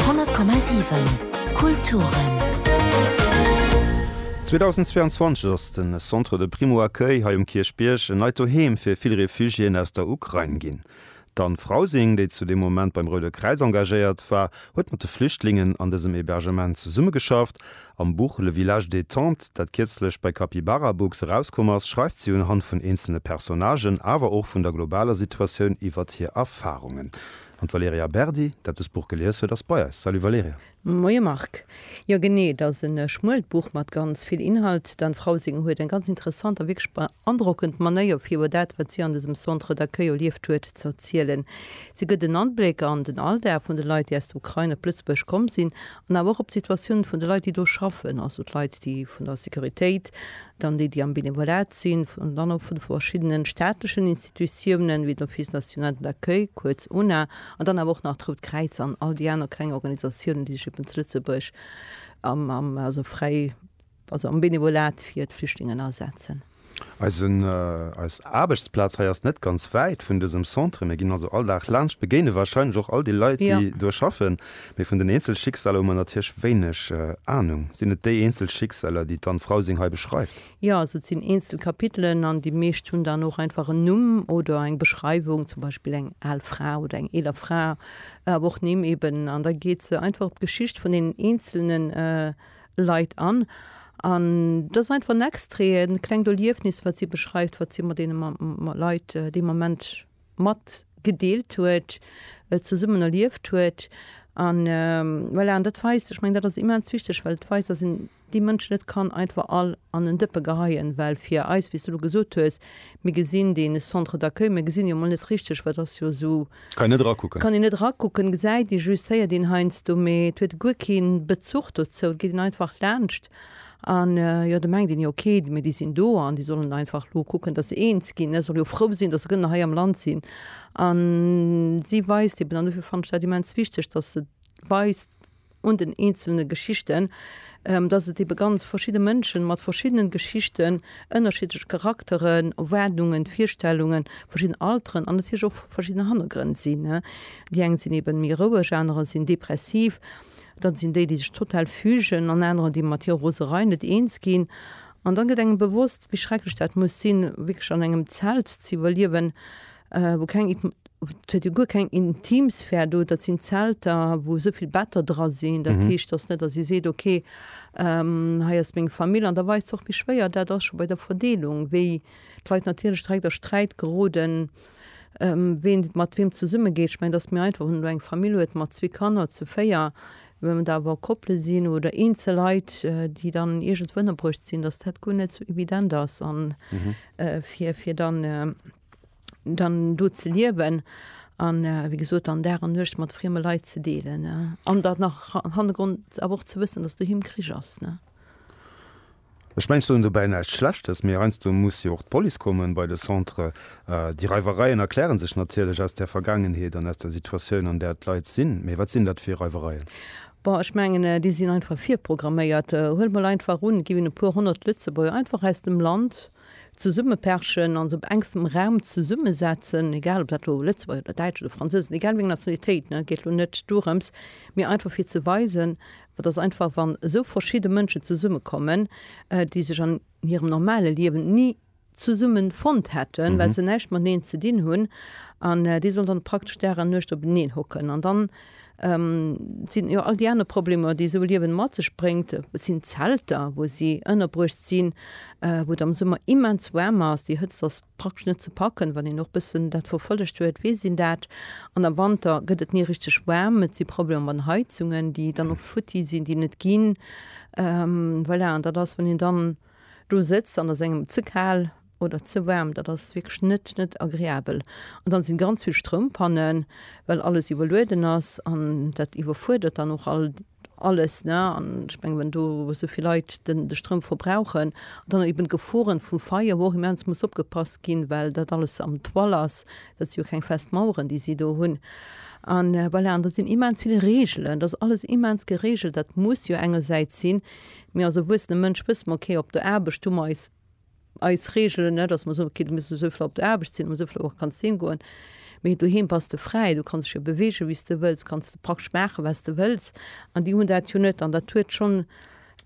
100,7 Kulturen. 2022 ass de Centre de Primo Accueil hei um Kierchbierg en neit Doheem fir vill Refugiéen aus der Ukrain ginn. D'Anne Frausing, déi zu deem Moment beim Roude Kräiz engagéiert war, huet mat de Flüchtlingen an dësem Hebergement zesummegeschafft. Am Buch Le village détente, dat kierzlech bei Capybara Books erauskomm ass, schreift si unhand vun eenzelne Personnagen, awer och vun der globaler Situatioun iwwert hir Erfarungen. An d'Valerija Berdi, dat dëst Buch gelies huet, ass bei eis. Salut Valerija! Moie Marc! Jo genee, et ass en schmuelt Buch mat ganz vill Inhalt. Dän Frau seng huet eng ganz interessant a wierklech beandrockend Manéier fir iwwer dat, wat si an dësem Centre d'accueil erlieft huet, ze erzielen. Si gëtt en Anbléck an den Alldag vun de Leit, déi aus der Ukrain op Lëtzebuerg komm sinn, an awer och op d'Situatioun vun de Leit, déi do schaffen, also d'Leit, déi vun der Sécuritéit, dann déi, déi am Benevolat sinn, dann och vun de verschiddenen staatlechen Institutiounen. D'Institutiounen, wéi den Office National de l'Accueil, kuerz UNA, an dann awer och nach d'Rout Kräiz an all déi aner kleng Organisatiounen, déi sech eben zu Lëtzebuerg am, also fräi, also am Benevolat fir d'Flüchtlingen asetzen. Eisen, eis Aarbechtsplaz hei ass net ganz wäit vun dësem Centre. Mir ginn also all Dag laanscht, begéine wahrscheinlech och all déi Leit, déi do schaffen. Mee vun den eenzel Schicksaler hu mer natierlech wéineg Anung. Sinn et déi eenzel Schicksaler, déi d'Anne Frausing hei beschreift? Jo, also et sinn eenzel Kapitelen an déi meescht hunn dann och einfach en Numm oder eng Beschreiwung, zum Beispill eng al Fra oder eng eeler Fra, awer och Nimm eben. An da geet se einfach op d'Geschicht vun deenen eenzele Leit an. An et ass einfach en Extrait, e klengt Erliefnis, wat si beschreift, wat si mat deene Leit dee Moment matgedeelt huet, zesummen erlieft huet. An voilà, an dat weist, ech mengen, dat ass immens wichteg, well et weist, dass een. déi Mënschen net kann einfach all an en Dëppe geheien, well fir eis, wéi s de elo gesot hues, mir gesinn dee Centre d'accueil, mir gesinn jo emol net richteg, wat ass jo esou, Kann een net erakucken. Kann een net erakucken, gesäit ee just, héiert een heiansdo, mee et huet guer kee Bezuch dozou, et geet een einfach laanscht an, jo, da mengt een, jo okay, mee déi sinn do an déi sollen einfach elo kucken, datt se eens ginn, ech soll jo frou sinn, datt se gënner hei am Land sinn. A si weist eben, an dofir fannen ech dat immens wichteg, datt se weist, un den eenzelne Geschichten, dass et ebe ganz verschidde Mënschen mat verschiddenen Geschichten, ënnerschiddlech Charakteren, Erwaardungen, Virstellungen, verschidden Alteren an natierlech och verschidden Hannergrënn sinn. Déi eng sinn eben méi roueg, anerer sinn depressiv, dann sinn déi, déi sech total fügen an anerer, déi mat hirer Roserei net eens ginn. An dann gëtt engem bewosst, wéi schrecklech dat muss sinn, wierklech an engem Zelt ze iwwerliewen, wou keng Et huet jo guer keng Intimsphär do, dat sinn Zelter, wou esou vill Better dra sinn. Dat heescht, et ass net, datt ee seet, okay, hei ass meng Famill. An da weist sech och méi schwéier, dat ass scho bei der Verdeelung, wéi d'Leit natierlech direkt a Sträit geroden, ween mat weem zesummegeet. Ech mengen, et ass méi einfach, wann een elo eng Famill huet mat zwee Kanner, zu véier. Wann et awer Koppele sinn oder eenzel Leit, déi dann iergendwou ënnerbruecht sinn, datt dat guer net esou evident ass, fir dann, dann do ze liewen an äh, wie gesot an Dag an Nuecht mat frieme Leit ze deelen äh, an dat nach an Hannergrond awer och ze wëssen, dass doheem Krich ass. Ne? Ech mengen, ech soen dobäi näischt Schlechtes, mee heiansdo muss jo och d'Police kommen bei de Centre. Äh, déi Reiwereien erkläre sech natierlech aus där Vergaangenheet an aus der Situatioun, an där d'Leit sinn. Mee wat sinn dat fir Reiwereien? Bon, ech mengen, äh, déi sinn einfach virprogramméiert. Äh, huel mol einfach un, ginn e puer honnert Lëtzebuerger einfach aus dem Land, zesummeperchen a se op engstem Raum zesummesetzen, egal ob dat elo Lëtzebuerger oder Däitsch oder Fransousen, egal wéi eng Nationalitéit, et geet elo net dorëms, mee einfach fir ze weisen, dass einfach wann esou verschidde Mënschen zesummekommen, déi sech an hirem normale Liewen ni zesumme fonnt hätten, well se näischt mateneen ze dinn hunn, an déi sollen dann praktesch Dag an Nuecht openeen hocken an dann Et sinn jo all déi aner Problemer, déi esou e Liewen mat sech bréngt. Et sinn Zelter, wou si ënnerbruecht sinn, wou et am Summer immens waarm ass. Déi Hëtzt ass praktesch net ze packen. Wann een och e bëssen dat verfollegt huet, weess een dat. An am Wanter gëtt et ni richteg waarm. Et si Problemer mat den Heizungen, déi dann och futti sinn, déi net ginn. Voilà, an dat ass, wann een dann do sëtzt an et ass engem ze kal, oder ze waarm, dat ass wierklech net net agreabel. An dann sinn ganz vill Stroumpan'en, well alles iwwerlueden ass an dat iwwerfuerdert dann och all alles ne. An ech mengen wann do esou vill Leit den de Stroum verbrauchen, dann eben d'Geforen vum Feier wou och immens muss opgepasst ginn, well dat alles am Toile ass. Dat si jo keng fest Maueren déi si do hunn. An voilà, an do sinn immens vill Regelen, dat ass alles immens geregelt. Dat muss jo engersäits sinn, mee als erwuessene Mënsch wësse mer, okay op der Aarbecht hu mer eis Eis Reegelen, net datt mer soen, okay, du muss esou vill op der Aarbecht sinn, an esou vill Auere kanns du heem goen, mee doheem bass de fräi, du kanns dech jo beweegen, wéi s de wëlls, kanns de praktesch maachen, wat s de wëlls. An déi hunn dat jo net. An dat huet schonn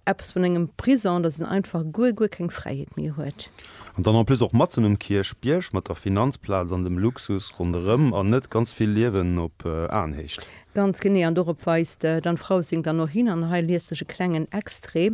eppes vun engem Prison, datt een einfach guer, guer keng Fräiheet méi huet. An dann en plus och matzen um Kierchbierg, mat der Finanzplaz an dem Luxus ronderëm, an net ganz vill Liewen op Aenhéicht. Ganz genee. An dorop weist d'Anne Frausing dann och hin, an hei liest ech e klengen Extrait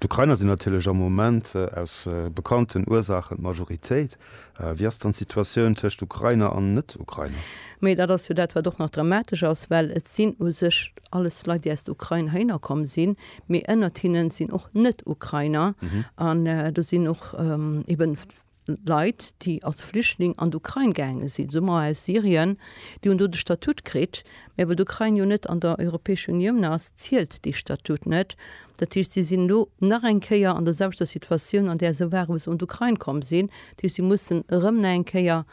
D'Ukrainer sinn natierlech am Moment aus bekannten Ursaachen d'Majoritéit. Wéi ass dann d'Situatioun tëscht Ukrainer an Net-Ukrainer? Mee dat ass jo dat, wat och nach dramatesch ass, well et sinn u sech alles Leit, déi aus der Ukrain heihinner komm sinn, mee ënnert hinne sinn och Net-Ukrainer an do sinn och eeben, Leit, déi als Flüchtling an d'Ukrain gaange sinn, soe mer aus Syrien, déi hunn do de Statut kritt, mä well d'Ukrain jo net an der Europäescher Unioun ass, zielt dee Statut net. Dat heescht, si sinn elo nach eng Kéier an der selwechter Situatioun, an där se ware wou se un d'Ukrain komm sinn. Dat heescht, si mussen erëm nach eng Kéier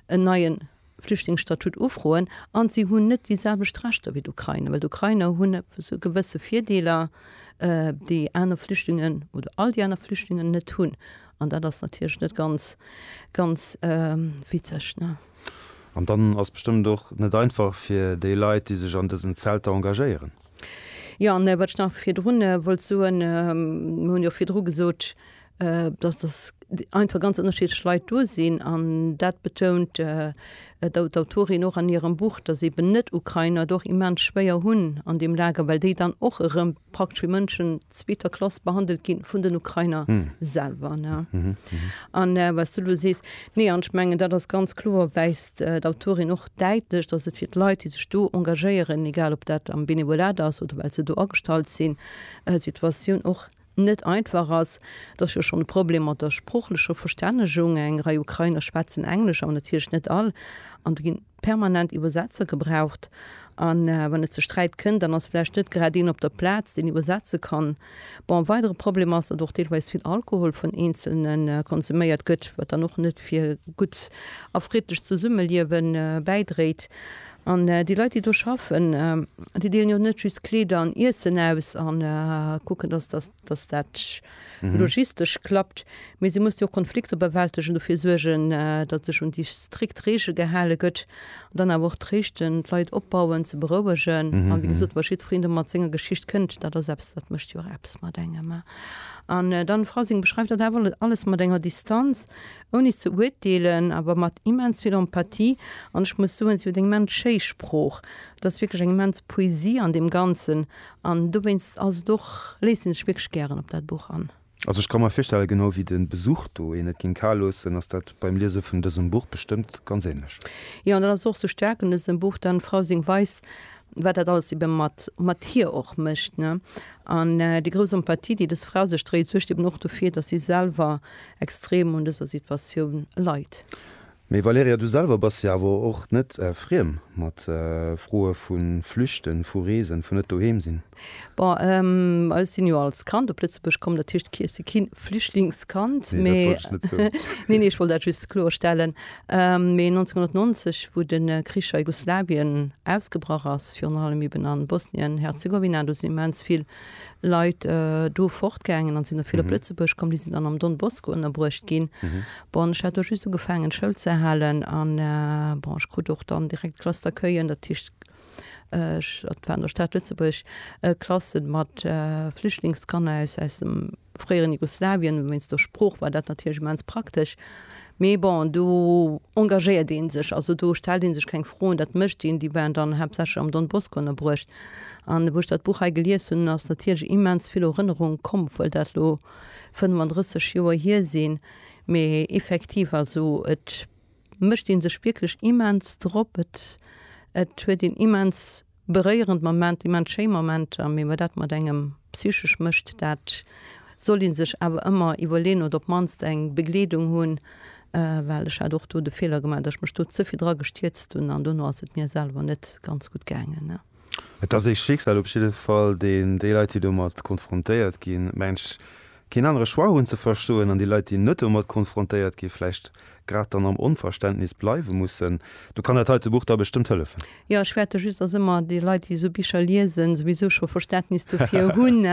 en neien. Flüchtlingsstatut ufroen an si hunn net déi selwecht Rechter wéi d'Ukrainer, well d'Ukrainer hunn e gewësse Virdeeler, déi aner Flüchtlingen oder all déi aner Flüchtlingen net hunn. An dat ass natierlech net ganz, ganz witzeg. An dann ass bestëmmt och net einfach fir déi Leit, déi sech an dësen Zelter engagéieren. Jo, an wat ech nach virdrun wollt soen, mir hunn jo virdru gesot, dass dass einfach ganz ënnerschiddlech Leit do sinn an dat betount d'Autorin och an hirem Buch, dass eeben Net-Ukrainer et och immens schwéier hunn an deem Lager, well déi dann och erëm praktesch wéi Mënschen zweeter Klass behandelt gi vun den Ukrainer selwer. An wat s du elo sees, nee, an ech mengen, dat ass ganz kloer, weist d'Autorin och däitlech, dass et fir d'Leit, déi sech do engagéieren, egal ob dat am Benevolat ass oder well se do agestallt sinn, d'Situatioun och net einfach ass. Et ass jo schonn e Problem mat der sproochlecher Verstännegung, eng Rei Ukrainer schwätzen Englesch, awer natierlech net all, an do ginn permanent Iwwersetzer gebraucht. A wann et ze Sträit kënnt, dann ass vläicht net grad een op der Plaz, deen iwwersetze kann. Bon, e weidere Problem ass, datt och deelweis vill Alkohol vun Eenzelne konsuméiert gëtt, wat dann och net fir e gutt a friddlecht Zesummeliewe bäidréit. An déi Leit, déi do schaffen, déi deelen jo net just Kleeder an Iessen aus a kucken, dass dat, dass dat logistesch klappt, mee si mussen jo och Konflikter bewältegen, dofir suergen, datt sech un déi strikt Reegele gehale gëtt, dann awer och tréischten, d'Leit opbauen, ze berouegen. A wéi gesot, wa jiddwereen do mat senger Geschicht kënnt, dat ass eppes, dat mécht jo och eppes mat engem. An dann, d'Frau Singh beschreift dat awer alles mat enger Distanz, Ouni ze urteelen, awer mat immens vill Empathie. An ech muss soen, si huet eng immens schéi Sprooch. Et ass wierklech eng immens Poesie an deem Ganzen. An dowéinst ass et och, léisst een sech wierklech gären op dat Buch an. Also ech ka mer virstellen, genau wéi de Besuch do een et géing kal loossen, ass dat beim Liese vun dësem Buch bestëmmt ganz änlech. Jo, an dat ass och esou staark un dësem Buch, dann d'Frau seng Weis, wat dat alles ebe mat, mat hir och mécht, ne. An déi grouss Empathie, déi des Fra sech dréit, suergt eben och dofir, datt si selwer extrem un dëser Situatioun leit. Mee Valerija, du selwer bass jo awer och net friem mat Froe vu Flüchten, vu Reesen, vun net doheem sinn. Bon, ech sinn jo als Kand op Lëtzebuerg komm, dat heescht, ech si kee Flüchtlingskand, mee. Nee, dat wollt ech net soen. Nee, nee, ech wollt dat just kloerstellen. Mee 1990, wou de Krich a Jugoslawien ausgebrach ass, virun allem eben a Bosnien-Herzegowina, do sinn immens vill. Leit do fortgaangen a sinn da vill op Lëtzebuerg komm. Déi sinn dann am Don Bosco ënnerbruecht ginn. Bon, ech hat do just ugefaangen Schoul ze halen a bon, ech krut och dann direkt d'Klass d'accueillen, dat heescht, dat war an der Stad Lëtzebuerg, Klasse mat Flüchtlingskanner aus dem, fréieren Jugoslawien, wéinst der Sprooch war dat natierlech immens praktesch. Mee bon, do engagéiert ee sech, also do stellt ee sech keng Froen, dat mécht een. Déi waren dann haaptsächlech am Don Bosco ënnerbruecht. An wou ech dat Buch hei gelies hunn, ass natierlech immens vill Erënnerung komm, obwuel dat elo 35 Joer hier sinn. Mee effektiv, also et mécht ee sech wierklech immens drop, et huet een immens. Beréierend Momenter, immens schéi Momenter, mee wat dat mat engem psychesch mécht, dat soll ee sech awer ëmmer iwwerleeën oder op d'mannst eng Begleedung hunn, well ech hat och do de Feeler gemaach, datt ech mech do ze vill dra gestierzt hunn an dono ass et mir selwer net ganz gutt gaangen. Et ass ee Schicksal op jidde Fall, deen déi Leit, déi domat konfrontéiert ginn, mensch, keen anere Choix hunn ze verstoen an déi Leit, déi net domat konfrontéiert ginn, vläicht grad dann am Onverständnis bleiwe mussen. Do kann dat heite Buch da bestëmmt hëllefen. Jo, ech fäerte just, dass ëmmer déi Leit, déi esou Bicher liesen, souwisou scho Verständnis dofir hunn.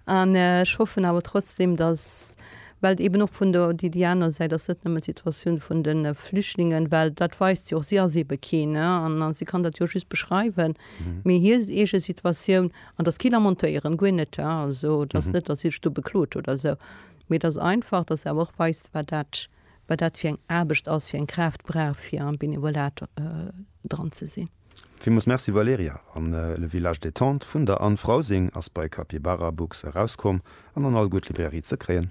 An ech hoffen awer trotzdem, dass, well eben och vun der, déi, déi aner Säit ass net nëmmen d'Situatioun vun de Flüchtlingen, well dat weist si och, si ass ebe keen, an si kann dat jo just beschreiwen, mee hir eege Situatioun An dass keen amontéieren, guer net, he, also et ass net, dass Iech do beklot oder esou, mee et ass einfach, dass Der awer och weist, wat dat, wat dat fir eng Aarbecht ass, fir eng Kraaft brauch, fir am Benevolat dran ze sinn. Villmools Merci Valerija. An Le Village Détente vun der Anne Frausing ass bei Capybarabooks erauskomm an an all gutt Librairie ze kréien.